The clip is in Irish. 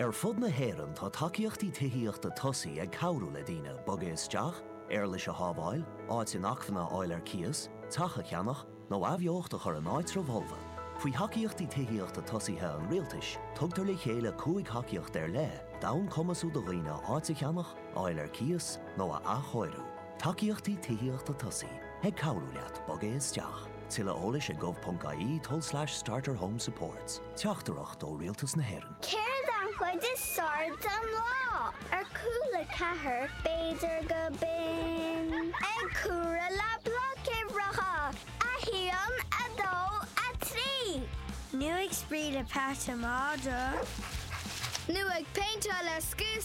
Ar fud na hÉireann tá tacaíochtaí tithíochta tosaigh ag cabhrú le daoine bogadh isteach, éarlais a shábháil, áit inacmhainne a fháil ar cíos, teach a cheannach, nó athbheocht a chur in áitribh fholmha. Faoi Thacaíochtaí Tithíochta Tosaithe an Rialtais, tugtar le chéile cúig thacaíocht ar leith d'fhonn cumasú do dhaoine áit a cheannach, a fháil ar cíos, nó a athchóiriú. Tacaíochtaí tithíochta tosaigh ag cabhrú leat bogadh isteach. Tuilleadh eolais ag gov.ie tulslais starter home supports. Teachtaireacht ó Rialtas na hÉireann. Céard an chuid is fearr den lá? Ar Cúla Ceathair, b'fhéidir gurb in ag comhaireamh le bloic uimhreacha, a haon, a dó, a trí. Nó ag spraoi le Pat an Madra. Nó ag péinteáil le scuab.